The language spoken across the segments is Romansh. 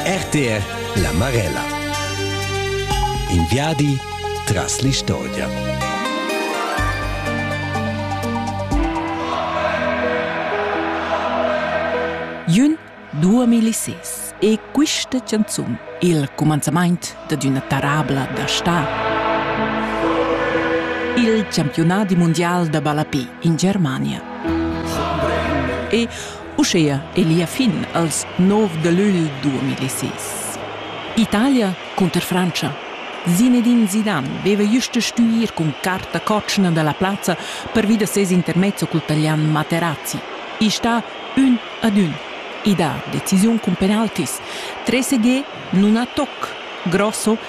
RTR La Marella In viadi tras l'istorgia. Jün 2006 e quista canzun il cumanzamaint da d'üna tarabla da sta. Il campionat mundial da ballape in Germania. E Uschea è lia fin als nov da lügl 2006. Italia cunter Frantscha. Zinedine Zidane veva just da stuir cun carta cotschna dalla plazza pervi da ses intermezzo cul talian Materazzi. I sta ün ad ün. I dà decisiun cun penaltis. 3 non ha toc. Grosso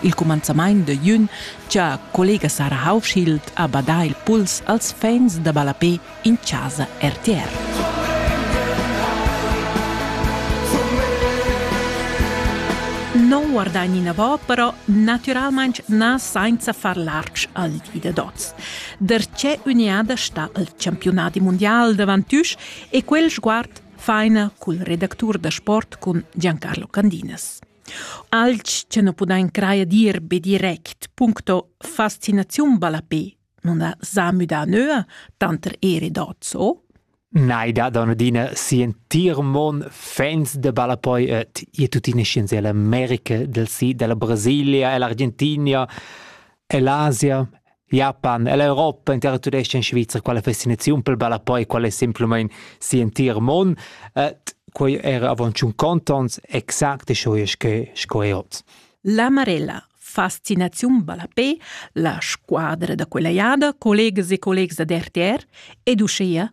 il cumanzamaint da jün cha collega Sara Haufschild ha badà il puls als fans da ballapè in chasa RTR. Non guardain inavò, però natüralmaing na sainza far lartg al di da dots. Darchè üniada sta al campiunadi mundial davantüsch e quel sguard faina cul redactur da sport cun Giancarlo Candinas. Alch cha nu pudain crajer dir be direct puncto fascinaziun ballapè nun s'ha müdà nöa tanter eir e dad so? Nei dat an adina sientir mon fans de ballapoi et e tuttina scienz e l'America del sid della Brasilia e l'Argentinia e l'Asia Japan e l'Europa intera tudescha in Svizra quella fascinaziun pel balla poi qual è semplamain si entir mon. Uh, quei era avant un contons exact e schoies che sco è ot. La Marella Fascinaziun Ballapé, la squadra da quella jada, collegas e collegs da RTR, educeia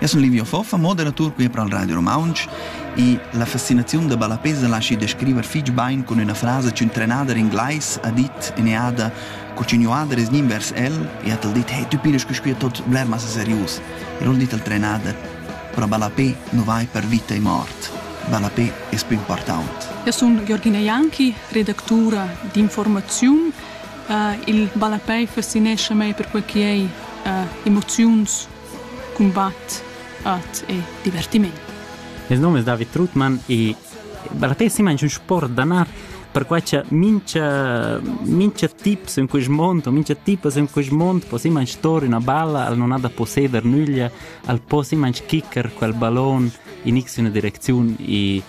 Eu sun Livio Foffa, moderatur qui pro il Radio Romaunch e la fascinaziun da ballapés laschi descriver fich bain cun üna frasa ch'ün'trenada d'inglais ha dit in eada cur ch'ün'uader es gnü invers el e hat el dit «Hey, tü pinas quisquia tot bler massa serius». E l'ho dit al trenader «Pro ballapé nu vai per vita e mort. Ballapé es pü important». Eu sun Georgina Janki, redactura d'informaziun. Uh, il ballapé fascinescha mei perque chi ei uh, emoziuns cumbat, art e divertiment. Il nome è David Trutmann e per te simanc un sport da nar perquai che mincha, mincha tips in quest mond o mincha tipas in quest mond po simanc stori una balla al non ha da posseder nüglia al po simanc kicker quel ballon in x una direcziun e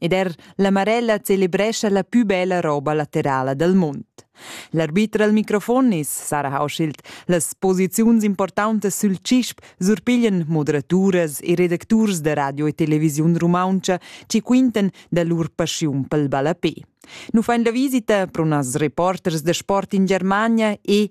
Ed er la Marella celebrescha la pü bella roba laterala dal mund. L'arbiter al microfon is Sarah Hauschild. Las posiziuns importantas sül CISP surpiglian moderaturas e redacturs da radio e televisiun rumauntscha chi quintan da lur paschiun pel ballapè. Nu fain la visita pro nas reporters da sport in Germania e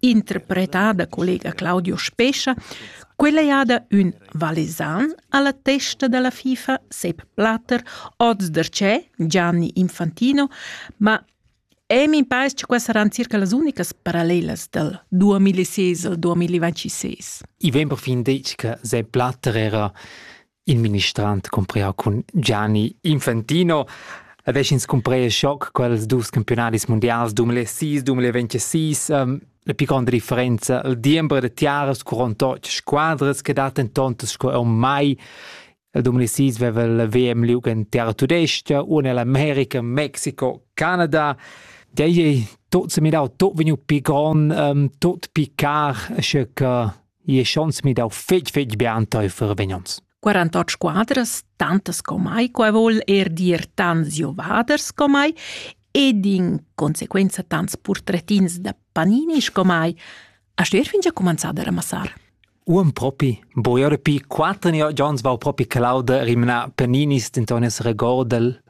interpretada da collega Claudio Spescha, quella è ada ün valesan alla testa della FIFA Sepp Blatter, oz der c'è Gianni Infantino, ma E mi pare che queste saranno circa le uniche parallele del 2006 al 2026. I vem perfin detg che Sepp Blatter era Il ministrant cumprea cun Gianni Infantino e veschins cumprea schoc quels dus campionadis mundials 2006-2026. Ähm, la pli gronda differenza il diember da tiaras curont otg squadras che dat en tontas sco ormai 2006 veva il VM liug en terra tudesca, una l'America, Mexiko, Canada. Dei tot se mirau tot vegnu pi gron, um, tot pi car, sche che e schons mi dau fetg fetg bia enteifer vegnons. 48 squadras, tantas comai, qua vol er dir tants jovaders comai, ed in conseguenza tants portretins da panini comai, a stuer fin già comenzar a ramassar. Un propi, boiare pi quattro giorni va propi clauda rimna paninis, denton es regordel,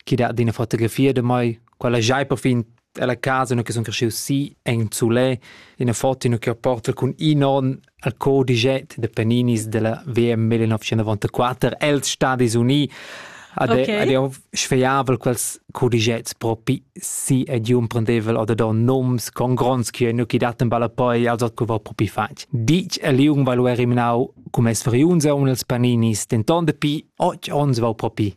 chi dat d'ina fotografia de mai, quella giai per fin Ella casa ina che sun cresciu si en Zulè, ina foto che porta cun in on al codiget de Paninis della VM 1994 els Stadis Uniti ad okay. ad sfeiavel quels codigets propi si ed un prendevel oder da noms con gronds che nu chi daten balla poi als co va propi fatg. Dic e liung vai lu eriminau cum es veriunza un els Paninis, denton de pi 8 ons va propi.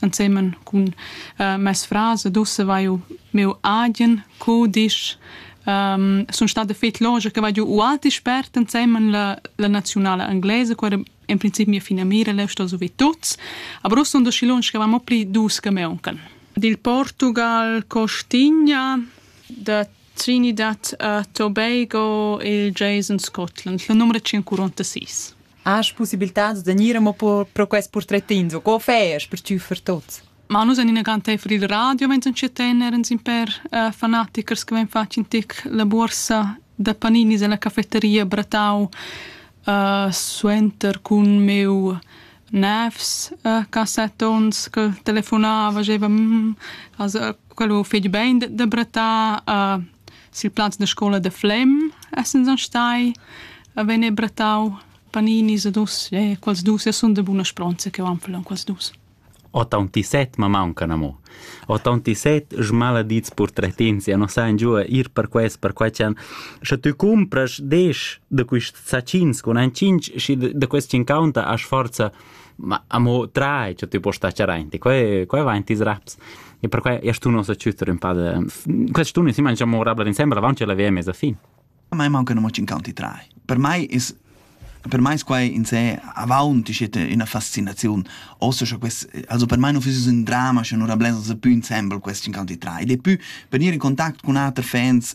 ensemen cun äh, mes frase dusse vai meu agen co disch um, sono state fet loge che vado uati spert insieme la, la nazionale inglese quella in principio mia fine mira le sto so vi tuts aber sto do schilons che vamo pli dus che me onkel dil Portugal Costigna da Trinidad a Tobago il Jason Scotland la numero 146 Hast possibilitads da gnir amo pro quest purtretins o co fais per tschüffer tuots? Ma nus en ina granteifer il radio, mentre che tener ins in per uh, fanatichers che ven fatg in tic la borsa da paninis alla cafetteria Bratau uh, suenter cun meu nefs uh, cassettons che telefonava, diceva mm, also quello fetg bein da, da Bratà, uh, Sil plaz da scola da Flem essens stai a vegnir brattau paninis ad us e quels dus e sun da buna spronza che van falon quels dus. Otauntissett ma mauncan amo. Otauntissett smaladits purtretins ja non sain giua ir per quest, per quai chan. Sche tü cumpras desch da quist sacins con ein cinc, schi da quest cincaunta as forza ma amo trai cha tü post stacher aint e quai quai va in tis raps e perquai e stun uns a chütter ün pa de quest stun si mangia morabla insembra avanti alla VM a fin a me manca non in canti trai per mai is per mai quai in sé avanti siete una fascinazione also schon quest also per mai non fiss un drama schon una blenza se più insemble quest in canti trai ed è più per venire in contatto con altri fans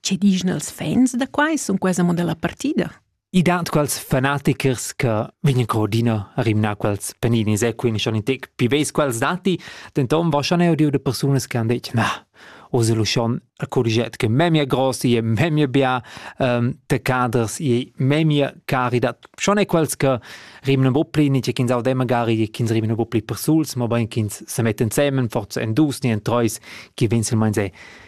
Che dischan els fans da quai sun quesa mo dalla partida? I dat quals fanatichers che vegnan coordina a rimnar quels paninis e quindi schon in tec più veis quels dati, denton va schon eu diu de persunas che han detto na, oz è lo schon a corriget che memia grossi e memia bia um, de caders e memia cari dat schon è quels che rimnan un po pli ni ch'ins aude magari e ch'ins rimnan un po pli persuls, ma bein ch'ins se metten semen forza en dus ni en treis che venselmein se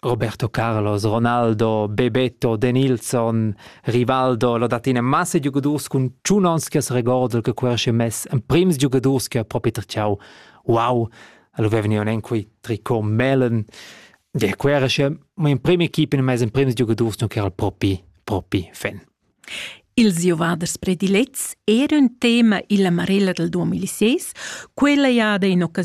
Roberto Carlos, Ronaldo, Bebeto, Denilson, Rivaldo, lo dat ina massa giugadurs cun tschun ons che regordel che quel si mess emprims giugadurs che ha propi tracciau. Wow, lo vevni un enqui tricot melen. De quera si mo in prima equipa in mess emprims giugadurs non ch'era propi propi fan. Ils giovaders predilets era un tema illa marella del 2006, quella jada in occasiun